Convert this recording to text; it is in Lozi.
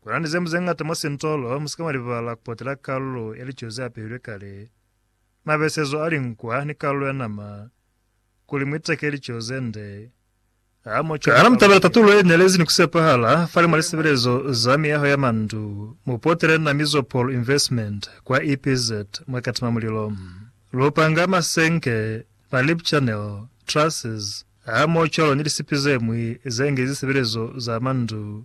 Kuna ni zemu zeñata mwa sintolo, musika mwa libala kupotela kalulo ya lico ze apehilwe kale, mabesezo a linkwa ni kalulo ya nama, kuli muiteke lico zende. Ha mo cwale Kana mutabela tatulo ye nelezi ni kusepahala fani mwa lisebelezo za miyaho ya mandu? Mupotele na Mizopol Investment kwa EPZ mwa Katima Mulilo. Lu panga masenke, ma lip channel, trusses, ha mo cwalo ni lisipi zemwi ze nge zisebelezo za mandu.